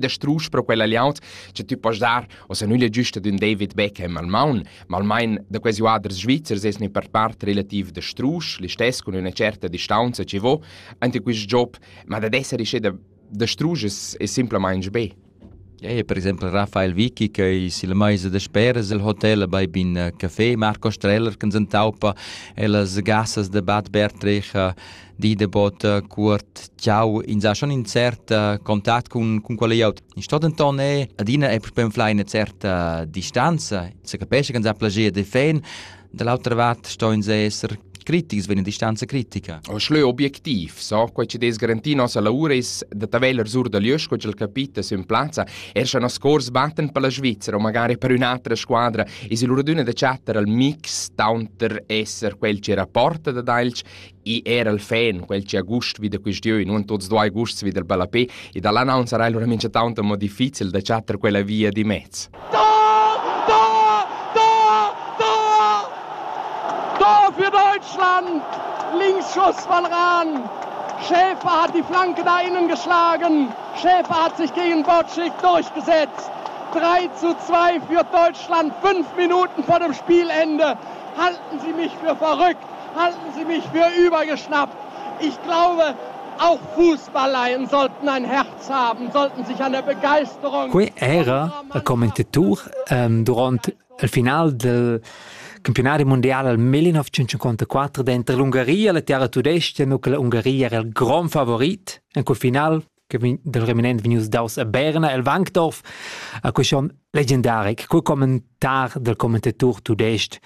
da strusch pro quella liaut che tu poss dar o se nulle giusta d'un David Beckham al maun, ma almain da quasi uaders svizzers es ne per part relativ da strusch, li stess con una certa distanza ci vo, ante quist job, ma da d'esser isce da da strusch es, es simplamain be. Ja, per esempio Rafael Vicky che è il mais de speres il hotel bei bin café Marco Streller che in Taupa e las gassas de Bad Bertrich di debot eh, cuort ciao ins ha schon in cert eh, contact cun cun quella iot in sto denton è adina è propen fly eine certa distanza se capisce che uns ha plagier de fan dall'altra vart sto ins esser critics vegn distanza critica. O schleu objektiv, so quei che des garanti nossa lavura is da taveller sur da lieus co il capita su in plazza, er scha nos cors batten per la Svizzera o magari per un'altra squadra is il uraduna da chattar al mix taunter esser quel che rapporta da Dalch I era il fan, quel che ha gust vi da questione, non tuts duai gusts vi del ballapé, e dalla non sarà allora mincha tanto mo difficil da chattar quella via di mezz. für Deutschland. Linksschuss von Rahn. Schäfer hat die Flanke da innen geschlagen. Schäfer hat sich gegen Botschik durchgesetzt. 3 zu 2 für Deutschland. Fünf Minuten vor dem Spielende. Halten Sie mich für verrückt. Halten Sie mich für übergeschnappt! Ich glaube, auch Fußballleien sollten ein Herz haben, sollten sich an der Begeisterung. Quei era a commentator um, durant il final del campionari mondiale al 1954 dentro l'Ungaria, la terra tudesca, nu che l'Ungaria era il grand favorit. In quel final che dal reminent vegnius daus a Berna el Wankdorf a quei schon legendaric cul commentar del commentator tudestg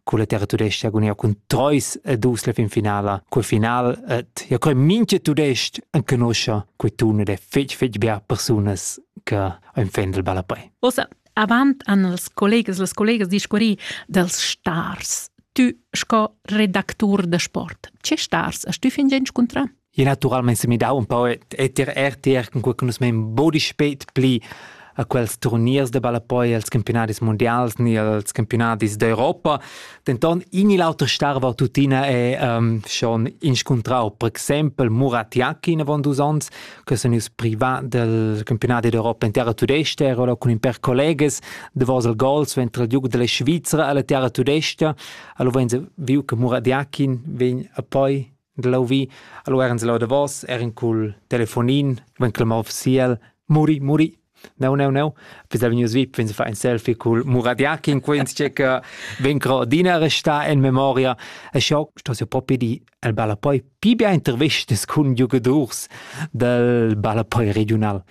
con la terra tudesca agonia cun Treus e dus la fin finala quel final et ja coi minche tudestg an conoscia quei tun ed è fetg fetg bia persunas che ein fan del ballapei. Osa, avant an els collegas les collegas discurri dels stars. Tu sco redactur de sport, ce stars hast du fin gen scontra? Je naturalmein se midau un pau et, et ir RTR con quei che nus mein bodi spet pli a quels turniers de ballapoi als campionadis mondials ni als campionadis d'Europa. Denton in il auter starva tuttina è um, schon inscuntrau, per exempel Muratiaki in avon dus ons, che sono ius privat del campionati d'Europa in terra tudesta, ero là con in per collegas de Vosel Gols, ventre il duc della Svizzera alla terra tudesta, allora vegn viu che Muratiaki vegn a poi Glau vi, allora ins lau davos, er in cul telefonin, ven clamar official, muri, muri. No, no, no. Fisa vegnius vip, vins fa ein selfie cul Muradiak in quens che che ven cro dina resta in memoria. E schau sto se propi di el balla poi pi bia intervistas cun giugadors del balla poi regional.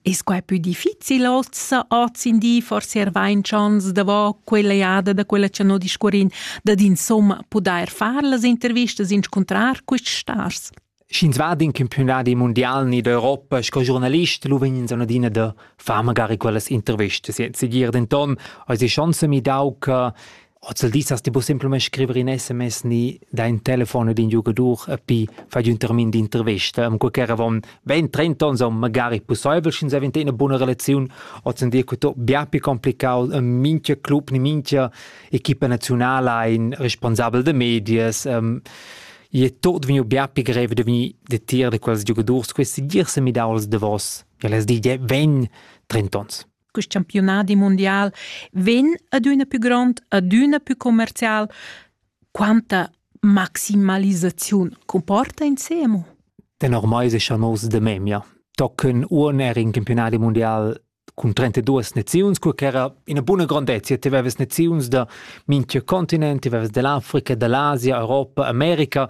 Es quai pü difficil ossa hoz in di forse er vain chans davo quella jada da quella cha no discurrin dad insomma pudair far las intervistas inscuntrar quists stars? Sch'ins va in campionadi mondial ni d'Europa sco giornalist, lu vegn ins adina da far magari quellas intervistas. Jetzt dir denton, eis ei schon semidau che Hoz il dis hast ti bu semplamain scriver in sms ni dai in telefon ad in giugadur e pi fai un termin d'intervista. Am qualche avon 20-30 ons on magari pussaivel sch'ins avent ina buna relaziun. Hoz en dir tutto bia più complicato e mincha club ni mincha equipa nazionala ein responsabel da medias. Um, I è tot vegniu bia più grev da vegnir detir da quels giugadurs. Questi girs mi daus da vos. El es di, vegn 30 ons. quest campiunadi mundial vegn adüna più grond, adüna più commercial. Quanta maximalisaziun comporta insemo? Den ormai sicha nos de memia. Tocken uon er in campionadi mundial cun 32 naziuns, cur ch'era ina buna grandezia, ti aveves naziuns da minchia continent, ti aveves dell'Africa, dell'Asia, Europa, America,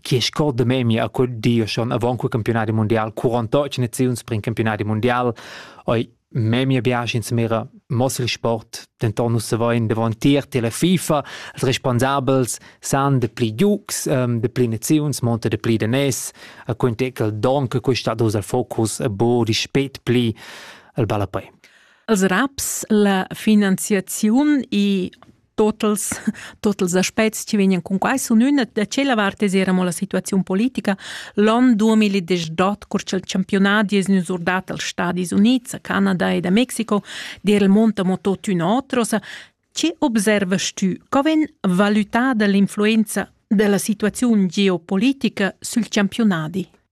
chi scorda memia a quel di schon avant quel campionadi mundial 48 naziuns per in campionadi mundial oi memia viaci insmira mossel sport denton nus savain davon tier tela FIFA als responsabels san de pli giugs um, de pli naziuns monta de pli de nes a quintecal don che questa dus al focus a bo di spet pli al ballapei als raps la finanziaziun e totals totals aspects che vegnan con quai sun üna da tschella vart es era mo la situaziun politica l'on 2018 cur cha'l championat es gnü surdat als Stadis Units a Canada ed a Mexico d'eira il mont amo tuottüna otrosa che observast tü co vegn valutada l'influenza della situaziun geopolitica sül championadi?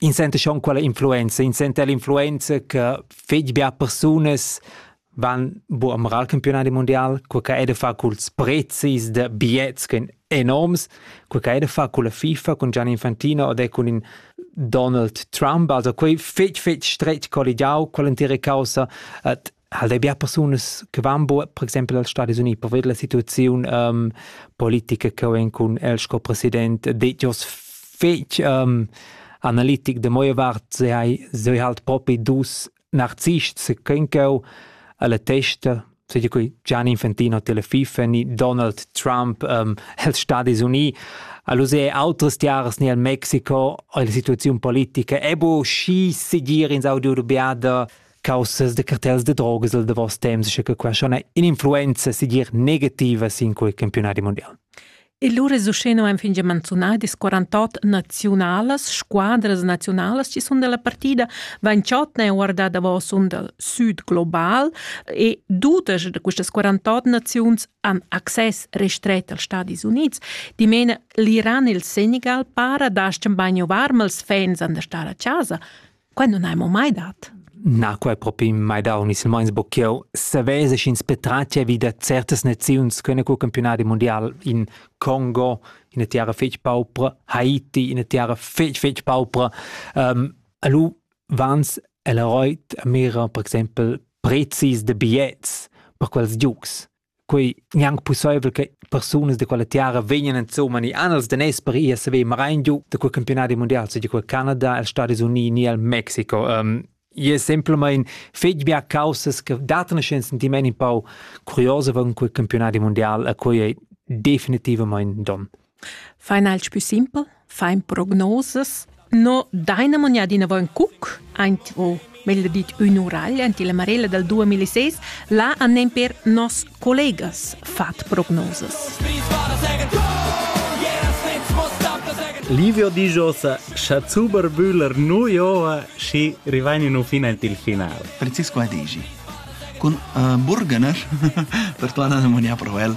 In senta schon quella influenza, in senta l'influenza che fetg bia persunas van bu am campionadi mundial, quei che ei da far culs prezis da bigliets ch'en enorms, quei che ei da far culla FIFA, cun Gianni Infantino ed è cun in Donald Trump, also quei fetg fetg stretg colligiau, quell'entira caussa, et halt bia persunas che van bo per exempel als Stadis Uniti per vedere la situazione um, politica che ho cun el sco president det jos fetg um, analitic de moje vart se hai se halt propi dus narzists se kenko alla testa so di cui Gianni Infantino Telefifa ni Donald Trump um, els Stadis Uniti Aluse autres tiaras ni al Mexico o la situazione politica e bo schi segir in Saudi Arabia caussas de cartels de drogas del davos temps, sche che qua schon in influenza sigir negativa sin quei campionati mondial. E lur resuceno en fin manzunai dis 48 naziunalas, squadras naziunalas ci sun della partida, Vanciot ne guarda davos un del sud global e dudas de quistas 48 naziuns han access restret als Stadis Units. Dimena l'Iran e il Senegal para dascem bagno varmals fans an der star a casa, Quai nun hai mo mai dat. Na, quai propi mai dau, ni silmains bo ch'jeu savess sch'ins petratgia vi da certas naziuns ch'han cul campiunadi mundial in Congo, ina terra fetg paupra, Haiti, ina terra fetg fetg paupra. Um, alu vans el roit a mira, per exempel, prezis de bigliets per quels giugs. quei gnanc pusseivel che persunas de quella tiara vegnan insomma ni anels daners per ir saver marein giu da quel campionati mondial se quel Canada, els Stati Uniti ni al Mexico. Um, e semplamain fetg bia causas che datano un sentiment un pau curioso von quel campionati mondial a quei è definitivamente don. Final pü simpel, fain prognosas. No daina manià d'inavant cuc aint o meglio dit ün uragl aint illa marella dal 2006. Là han nemper nos collegas fat prognosas. Livio dijosa cha Zuber Bühler nu joa schi rivain nu fin aint il final. Francisco Adigi. Con uh, Burgener, per tu andare a Monia Provel.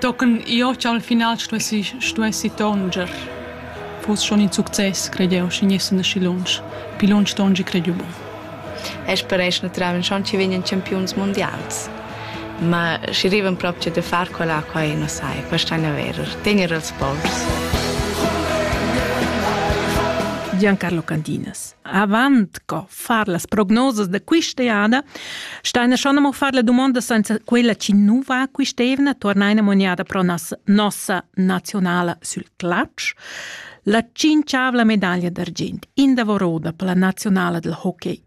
Tochen jeu ch'al final stuessi stuessi tonger. Fuss schon in success, credeu, schi gnessan aschi lunsch. Pli lunsch tongi credeu bun. E speresch naturalmein schon ci vegnan campiuns mundials. Ma schi rivan proprio da far quella quai, non sai, questo è vero, tenere els povers. Giancarlo Candinas, avant co far las prognosas da quist'eada, staina schon amo far la domanda senza quella chi nu va quist'eivna, tornaina moniada pro nos, nossa nazionala sül clutch. La cinciavla medaglia d'argient in davoro da la nazionala del hockey.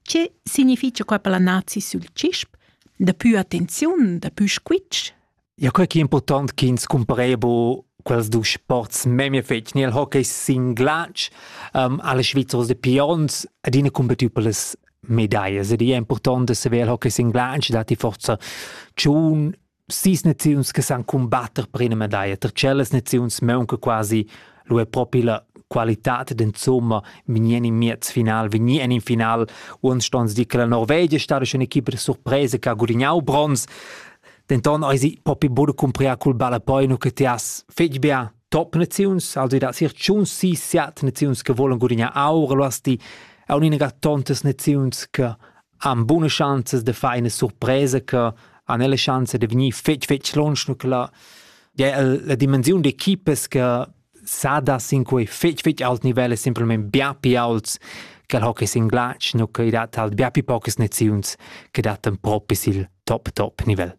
Che significha qua per la nazi sül cisp? Da più attenziun, da più squitsch? Ja, quai che è important ch'ins cumparebu quels dus sports memia fetg. Nel hockey sin glatsch um, alle Svizzers de Pions adina combattu per les medallas. Ed è important de saver il hockey sin glatsch dati forza tschun sis naziuns che san combatter per una medaglia. Tra celles naziuns manca quasi lo è proprio la qualità d'insomma venian in miez final, venian in final. Uns stons di che la Norvegia è stata un'equipa di sorpresa che ha guadagnato bronz. Denton eisi propi buca cumpriar cul ballapoi che ti has fetg bia top naziuns, also da sir tschun si siat naziuns che volen gudignar aur, lu hast ti aunc ina tontas naziuns che han buna schanzas de far ina surpresa che han la schanza de vegnir fetg fetg lunsch, nu che la, ja, la dimensiun d'equipas che sada sin quei fetg fetg alt nivel e simpelmente bia pi aults che il hockey sin glatsch nu che dat halt bia pi pocas noziuns che dattan propi sil top top nivel.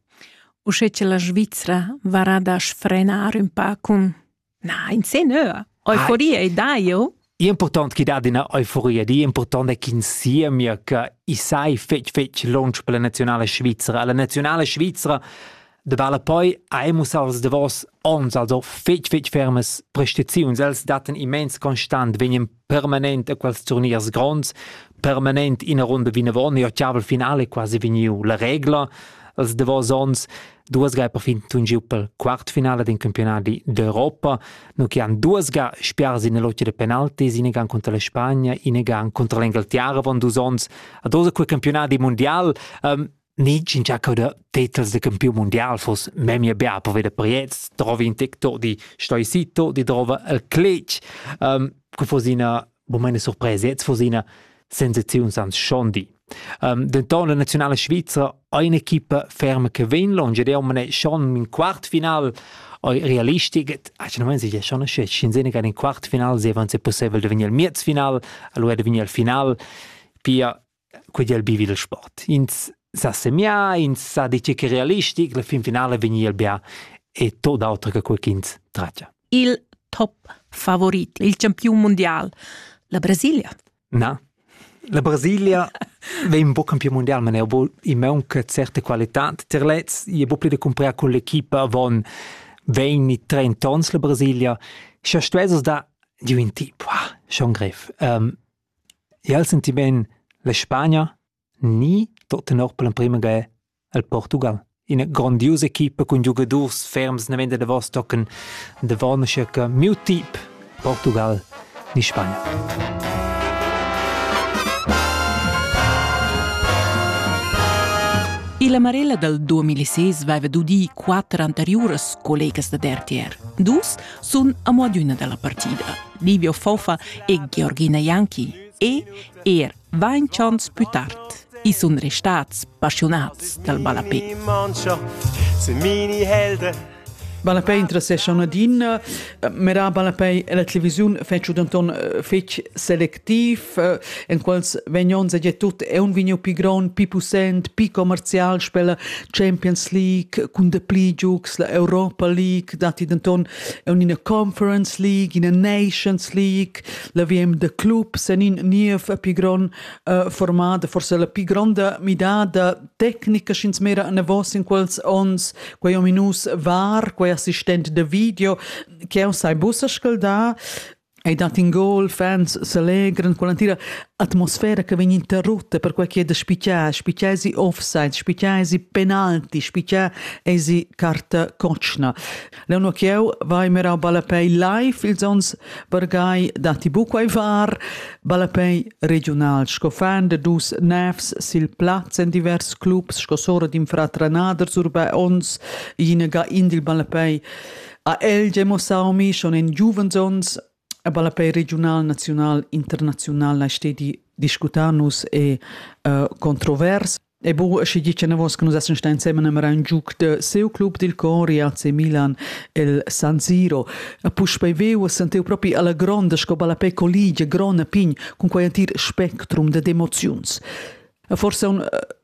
Usche che la Svizzera varà da sfrenar un pa cun na in se nö euforia e dai jo Impurtant chi dat üna euforia, di impurtant è ch'ins siemia che i sai fetg fetg lunsch per la nazionala svizra. La nazionala svizra davala poi aimus als davos ons also fetg fetg fermas prestaziuns. Els dattan immens constant, vegnan permanent a quels turniers gronds, permanent ina runda vinavon, e ottaval finale quasi vegniu la regla. Els davos ons Duas ga è perfin tun giu pel quartfinale d'un campionati d'Europa, no che han duas ga spiars in l'otg de penaltis, in gan contra la Spagna, in gan contra l'Engleterra van dus ons, ad osa quel campionati mondial. Um, Nid in giacca da titels de campiun mondial fos memia bia per veder Priez, trovi in tec to di Stoicito, di trova el Clic. Um, que fos ina Bo meine Surpresa jetzt von seiner Sensaziun sans Schondi. Um, denton la nazionale svizra un'equipa ferma che vegn longe de omne schon in quartfinal realistic actualmente si schon c'è Shinzene che in quartfinal se avanza possibile de venir al miezfinal allora de venir al final pia Quei ei il bi il sport. Ins sa semiar, ins sa dir tgei che è realistic, la fin finala vegni el bia e tot auter che quei ch'ins tratga. Il top favorit, il campiun mundial, la Brasilia. Na, la Brasilia vegn un po campiun mundial, ma i maunca certe qualitad ter lez, i è buca pli da cumprar con l'equipa avon 20-30 ons la Brasilia. Scha stuesses dar giu in tip, wow, schon grev. Um, Jeu el senti bein la Spagna ni tut tenor per l'emprema ga il Portugal. Ina grondiusa equipa cun giugadurs ferms naven da davos tocan davon aschia che miu tip Portugal ni Spagna. Illa Marella dal 2006 vaiva dudì quatter anteriuras collegas dad RTR. Dus sun amo adüna da la partida, Livio Fofa e Georgina Janki e er vainch ons pü tard. I sun restats passiunats dal ballapè. Ballapei interessescha una din, mera ballapei e la televisiun fece danton fec select activ, eh, en quals vegnons e tut è un vigno pi gron, pi pussent, pi commercial spella Champions League, cun de pli giugs la Europa League, dati denton un ina Conference League, ina Nations League, la VM de clubs en in niev pi gron uh, formada, forse la pi gronda midada tecnica sch'ins mera an vos in quels ons, quei ominus var, quei assistent de video, che o sai bussa scalda, Ei dat in gol, fans selegran con l'entira atmosfera che vegn interrutta per quei che da spicar, spicar si offside, spicar si penalti, spicar si carta cotschna. Leu no cheu vai mirau ballapei live ils ons vargai dati buca ai var, ballapei regional sco fan de dus nefs sil plaz en divers clubs sco sora d'in fratranaders urba ons ina ga in dil ballapei Ha el gia mussau mi schon in giuvens onns a ballapei regional, naziunal, internaziunal lai stedi discutar nus e uh, controvers. E bu, schi gi che navos che nus essen sta insieme nemmer ein giuc de seu club dil Cori AC Milan el San Siro. A puspei veu a senteu propi alla gronda sco ballapei colligia grona pign cun quei antir spectrum de emoziuns. A forse un uh,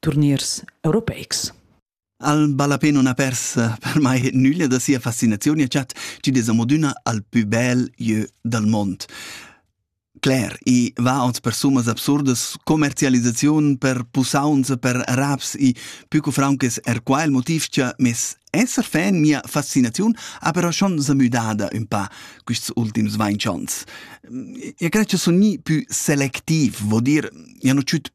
turniers europeics. Al ballapé non ha pers per mai nüglia da sia fascinaziun e chat chi des amodüna al pü bel lieu dal mond. Cler, i va ot per summas absurdas, commercialisaziun per pusaunza per raps i pü cu fraunches er qua il motiv cha mes esser fan mia fascinaziun ha però schon samüdada ün pa quists ultims vainchonts. E cred cha sun gnii pü selectiv, vo dir, ja nu dschüt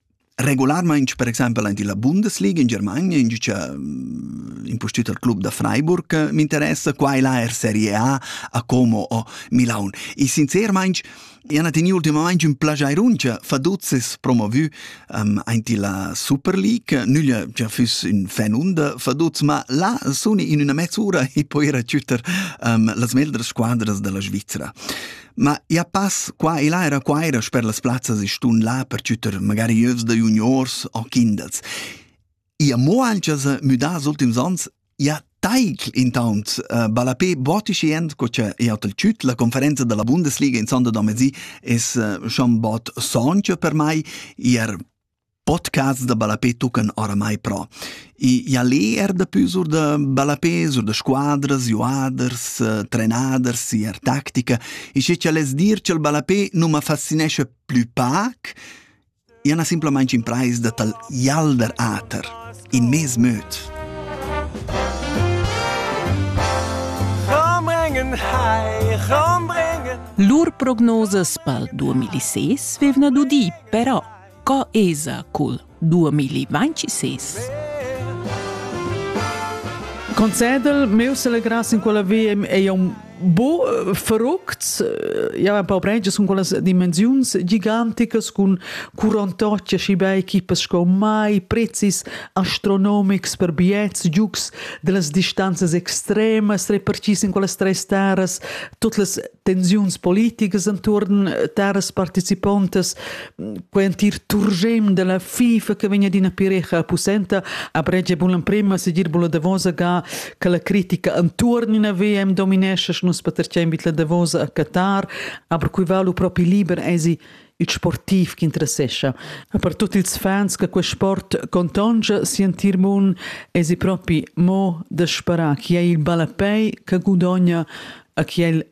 Regularmaing per exaimpel aint illa Bundesliga in Germania ingiücha mm, impustüt al club da Freiburg eh, m'interessa, qua e là er Serie A a Como o Milaun. E sincermaing han teni ultimamaing ün plagiairunch faduzzes promovü um, aint illa Super League. Nüglia già füss ün fan und faduz, ma là suni in üna mezz'ura e poi rachütter um, las meglder squadras della Svizzera. Ma ia pass qua e là era quaira sper las plazzas e stun là per chütter magari övs da juniors o kindels. Ia mo ancha s'ha müdà als ultims ans, ia taigl intaunt uh, ballapé botischi end co cha eau t'al tschüt. La conferenza dalla Bundesliga in sonda da mezì es uh, schon bod soncha per mai. Ier Podcasts da ballapè tuccan oramai però. I ia lê eir dapü sur da ballapè, sur da squadras, juaders, trenaders, eir tactica. E sche cha less dir cha'l ballapè nu ma fascinescha plü pac, ia n'ha simplamaing imprais da t'al jalder ater, in mez möd. Lur prognosas pel 2006 vevna dudi, però Co esa cul 2026? Concedel, meus alegras in quella via è un bo eh, fructs eh, ja ein paar Branches con quelles dimensiuns giganticas con curantocce și bei equipes sco mai prezis astronomics per biets giugs delas distanzas extremas reparcis in quelles tres terras tot las tensiuns politiques intorn terras participantas quei entir turgem della FIFA che vegn d'ina pirecha pussenta a bregia bun l'emprema segir bun la Davosa ga che la critica antuorn in VM dominesce nus patercem bit la Davosa a Qatar aber cui valu propi liber esi il sportiv che interessescha e per tutti ils fans che quel sport contongia sentir mun esi propi mo da sperare chi è il ballapei che gudogna a chi è il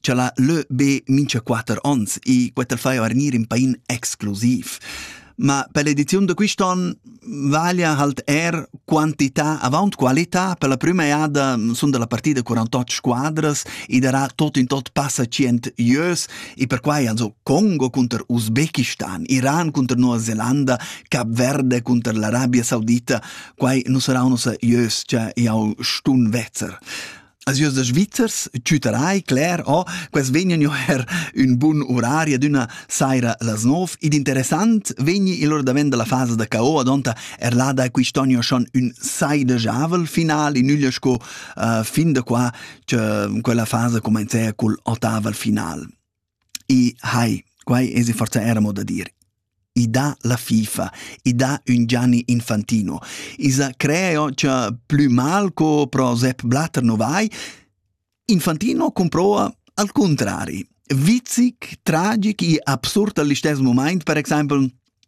cha la lö be mincha quatter ons e quetta fai vargnir in pain exclusiv. Ma per l'ediziun da quist'on vaglia halt er quantità avaunt qualità per la prüma eada sun da la partida 48 squadras e darà tot in tot passa 100 ieus e perquai also Congo cunter Usbekistan, Iran cunter Nova Zelanda, Cap Verde cunter l'Arabia Saudita, quai nu sarà unossa ieus cha jau stun vezzer. Alsieus da Svizzers tüterai cler, oh, quels vegnan jo her ün bun urari ad üna saira las nov, ed interessant vegni il lur davent dalla fasa da KO adonta er là da quist'anno schon ün saidegiavel final in üglia sco uh, fin da qua che quella fasa comenza col ottaval final. I hai, quai esa forsa eir amo da dir, i dà la FIFA, i dà ün Gianni Infantino, i s'ha creo cha plü mal co pro Sepp Blatter no vai. Infantino comproa al contrari. Vizic, tragic e absurd al istess momaint, per exaimpel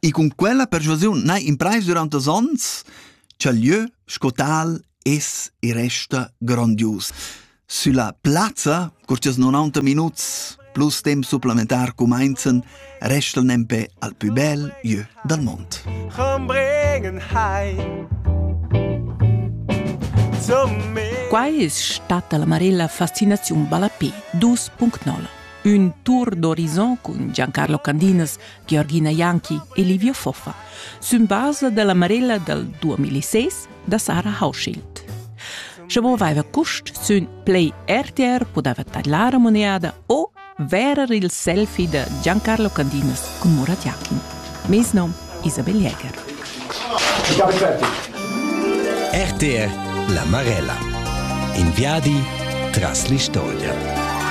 E cun quella persuasiun n'hai imprais durant dus onns cha'l lieu sco tal es e resta grondius. Sülla plazza, cur chi's 90 minuts plus temp supplementar cumainzan, restan nempe al pü bel jö dal mond. Quai es stata la Marella Fascinaziun Ballapé 2.0. Un tour d'horizon cun Giancarlo Candinas, Georgina Janki e Livio Foffa, sün basa della Marella dal 2006 da Sarah Hauschild. Sche bo vaiva cust sün Play RTR podava tadlar a moneada o verer il selfie da Giancarlo Candinas con Murat Jakin. Mes nom Isabel Jäger. RTR La Marella. In viadi tras l'istoria.